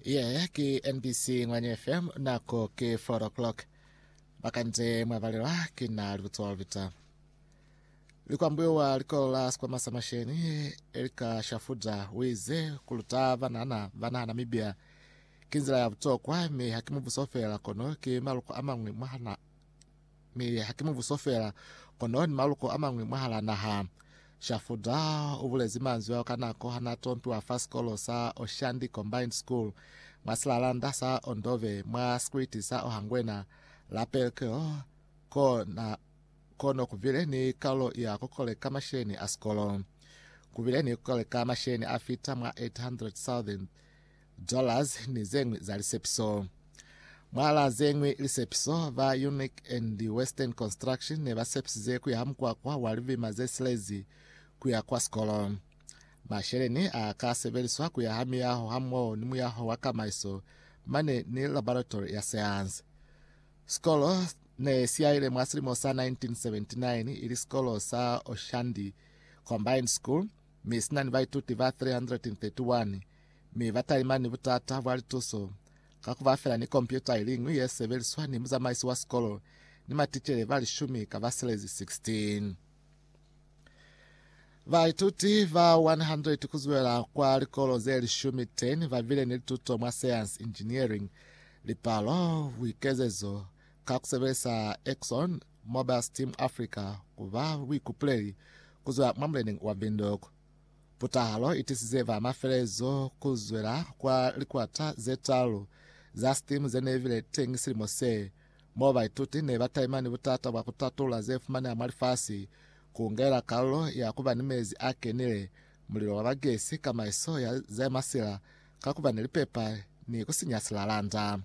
ye ki nbc ngwanye fm nako ki 4 o'clock bakanje mwabalelwa ki na libutswa lubita likwambuiwa likolo la sikwama sa masheni elika shafuda wize kuluta banana bana namibia ki nzila ya butokwa mi haki mubuso fela kono ki maluko a mangwe mwahana Mi haki mubuso fela, kono ni maluko amañwi mwahala naha. Shafuda ubulezi manzwi ao ka nako hanaa tompiwa fa sikolo sa Oshandi Combined School mwa silalanda sa Ondove mwa sikwiti sa Ohangwena la Pelkil ko na ko no kubile ni kalulo ya kukoleka masheni a sikolo. Kubile ni kukoleka masheni afita mwa 800,000 dollars ni zeñwi za lisepiso. Mwa la zeñwi lisepiso, ba UNIC and Western Construction ne ba sepisize ku yaha mukwakwa wa libima ze silezi ku ya kwa sikolo. Masheleni a ka sebeliswa ku yaha miyaho hamoho ni muyaho wa kamaiso mane ni laboratory ya seanse. Sikolo ne si yaile mwa silimo sa 1979 ili sikolo sa Oshandi Combined School mi si na ni baituti ba 331 mi ba talimani ni butata bwa lituso ka ku ba fela ni kompyuta i liñwi ye sebeliswa ni muzamaisi wa sikolo ni maticele ba lishumi ka baselezi 16. Baituti ba 100 ku zwela kwa likolo ze lishumi 10 ba bile ni lituto mwa sayansi, engineering, lipalo, buikezezo ka ku sebelisa Exxon Mobil Steam Africa ku ba buikupuleli ku zwa mwa muleneñi wa Windhoek. Putahalo itisize ba mafelezo kuzwela kwa likwata zetaalu za STEAM zeneibile teñi silimo se, mo baituti neba taimani butata bwa kutatula zefumaneha mwa lifasi, kuungela kalulo ya kuba ni mezi a kenile, mulilo wa ba gesi, kamaiso ya zemasila ka kuba ni lipepa ni kusinya silalanda.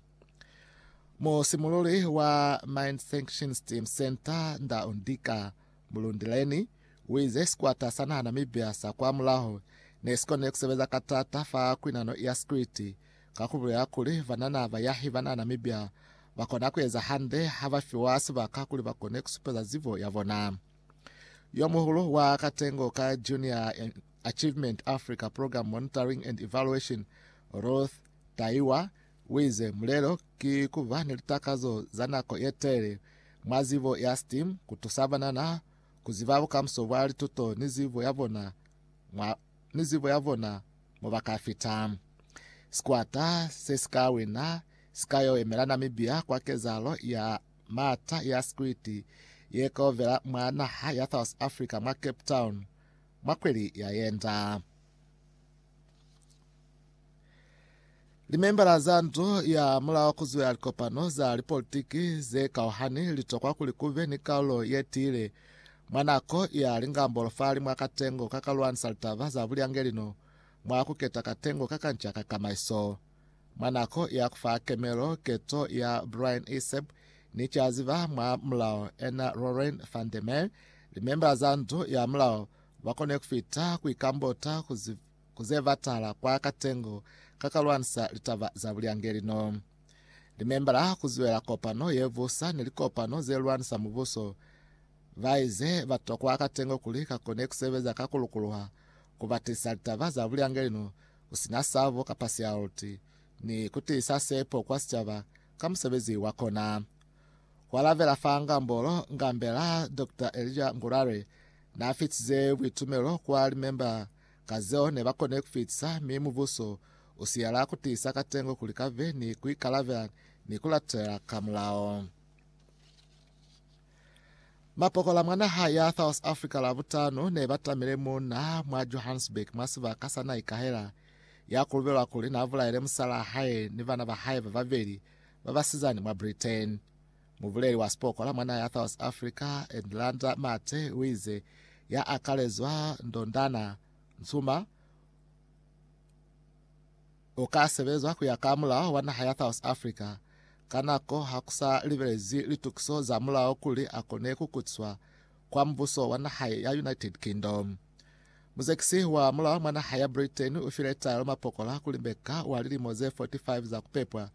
Musimululi wa Mine Sanction STEAM Center, Ndau Ndika, Mulundileni uize sikwata sa naha Namibia sa kwa mulaho nesikone kusebeza ka taata fa kwinano ya sikwiti ka kubulela kuli banana bayahi bana Namibia bakona kueza hande habafiwa sibaka kuli bakone kusupeza zibo yabona. Yomuhulu wa katengo ka Junior Achievement Africa Program Monitoring and Evaluation, Ruth Taiwa, Uize, Mulelo ki kuba ni litakazo za nako yetelele mwa zibo ya STEAM kutusa banana kuziba bukamuso bwa lituto ni zibo yabona mwa ni zibo yabona mobaka fita. Sikwata se sika wina sika yo emela Namibia kwa kezalo ya mata ya sikwiti ye kaovela mwa naha ya South Africa mwa Cape Town mwa kweli ya yenda. Limembala za ndu ya mulao kuzwela likopano za lipolitiki ze kauhani litokwa kuli kube ni kaulo ye tiile mwa nako ya lingambolo fali mwa katengo ka kalwanisa litaba za bulyangeli no mwa kuketa katengo ka kanca ka kamaiso. Mwa nako ya kufa kemelo keto ya Brian Iseb ni caziba mwa mulao ena Lorraine van der Meer, limembala za ndu ya mulao Ba kone ku fita ku ikambota ku, ku ze batala kwa katengo ka ka lwanisa litaba za bulyangeli no. Limemba la ku zwela kopano ye busa ni likopano ze lwanisa mubuso ba ize ba tokwa katengo kuli ka kone ku sebeza ka ku lukuluha ku ba tiisa litaba za bulyangeli no ku si na sabo kapa sialti ni ku tiisa sepo kwa sicaba ka musebezi wa kona. Ku alabela fa ngambolo, ngambela Dokta Elijah Ngurare Na fitize buitumelo kwa limemba ka zeo ne ba kone ku fitisa, mi Mubuso u siyela ku tiisa katengo kuli ka be ni ku ikalabela ni ku latela ka mulao. Mapokola mwa naha ya South Africa Labutano ne ba tamile muuna mwa Johannesburg mwa sibaka sa na ikahela ya kulubelwa kuli na bulaile musalaa hae ni bana ba hae ba babeli ba basizani mwa Britain. Mubuleli wa sipokola mwa naha ya South Africa, Edlanda Mathe, uize ya akalezwa Ndondana Ntsuma uka sebezwa kuya ka mulao wa naha ya South Africa ka nako ha kusa libelezwi litukiso za mulao kuli akone kukutiswa kwa mubuso wa naha ya United Kingdom. Muzekisi wa mulao mwa naha ya Britain ufile taelo mapokola kuli mbeka wa lilimo ze 45 za kupepwa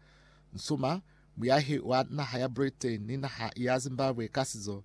Ntsuma Muyahi wa naha ya Britain ni naha ya Zimbabwe ka sizo